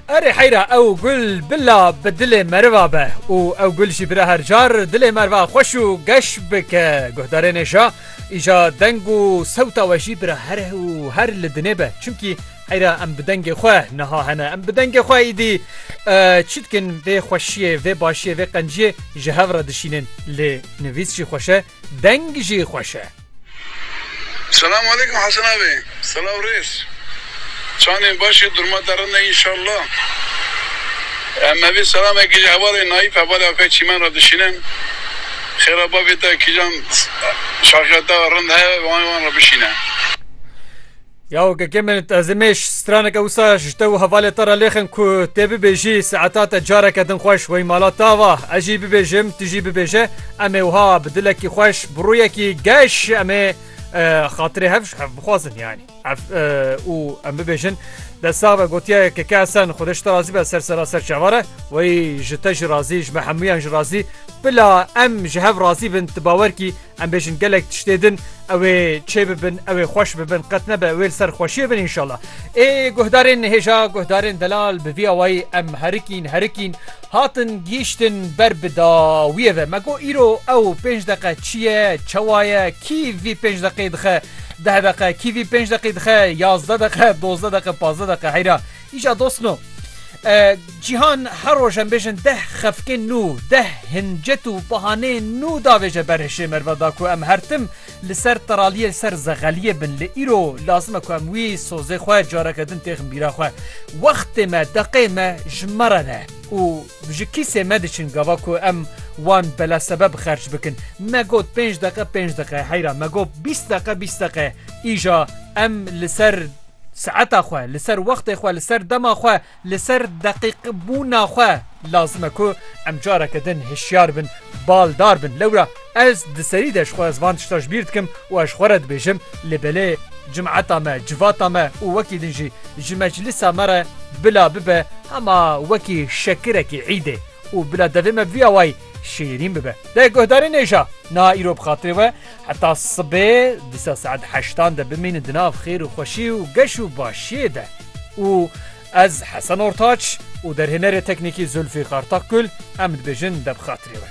Erê heyra ew gul bila bi dilê meriva be û ew gul jî bira her car dilê merva xweş û geş bike guhdarê nêşa îja deng û sewta we jî bira her û her li dinê be çimkî heyra em bi dengê xwe niha hene em bi dengê xwe îdî çi dikin vê xweşiyê vê başiyê vê qenciyê ji hev re dişînin lê nivîs jî xweşe deng jî xweşe. Selam aleykum Hasan abi. Selaw rêz. Çandên başî durma te rind e înşallah. Em evî selamekî ji hevalên Naîf hevalê Akay Çîmen re dişînin. Xêra bavê te kîjan şaxya te rind heye wan re bişîne. Ya OKK'ê min ez ê mêj straneke wisa ji te û hevalê te re lêxin ku tê bibêjî saeta te careke din xweş wey mala te ava ez jî bibêjim tu jî bibêje em ê wiha bi dilekî xweş bi rûyekî geş em ê xatirê hev ji hev bixwazin yanî ev û em bibêjin dest sax be gotiye KK Esen xwedê ji te razî be ser sera ser çavar e wey ji te jî razî ji me hemûyan jî razî bila em ji hev razî bin tu bawer kî Em bêjin gelek tiştê din ew ê çê bibin ew ê xweş bibin qet nebe wê li ser xweşiyê bin înşallah. Ê guhdarên hêja guhdarên delal bi vî awayî em herikîn herikîn hatin gîştin ber bi dawiyê ve. Me got îro ew pênc deqe çi ye çewa ye kî vî pênc deqê dixe deh deqe kî vî pênc deqî dixe yazdeh deqe dozdeh deqe pazdeh deqe heyra Îja dost no. Cîhan her roj em bêjin deh xefkên nû, deh hincet û bahaneyên nû davêje ber hişê merve da ku em her tim li ser teraliyê li ser zexeliyê bin lê îro lazim e ku em wî sozê xwe careke din têxin bîra xwe. Wextê me, deqê me ji me re ne û ji kîsê me diçin gava ku em wan bela sebeb xerç bikin. Me got pênc deqe pênc deqe heyra me got bîst deqe bîst deqe îja em li ser Saeta xwe, li ser wextê xwe, li ser dema xwe, li ser deqîqbûna xwe lazim e ku em careke din hişyar bin, baldar bin. Lewra ez di serî de ji xwe ez van tişta ji bîr dikim û ez ji xwe re dibêjim lê belê cimeta me, civata me û wekî din jî ji meclisa me re bila bibe hema wekî şekirekî îdê û bila devê me vî awayî şêrîn bibe. Dê guhdarên êja niha îro bi xatirê we, Heta sibê dîsa saet heştan de bimînin di nav xêr û xweşî û geş û başiyê de û ez Hesen Ortaç û derhênerê teknîkî Zulfîqar Takgul em dibêjin de bi xatirê we.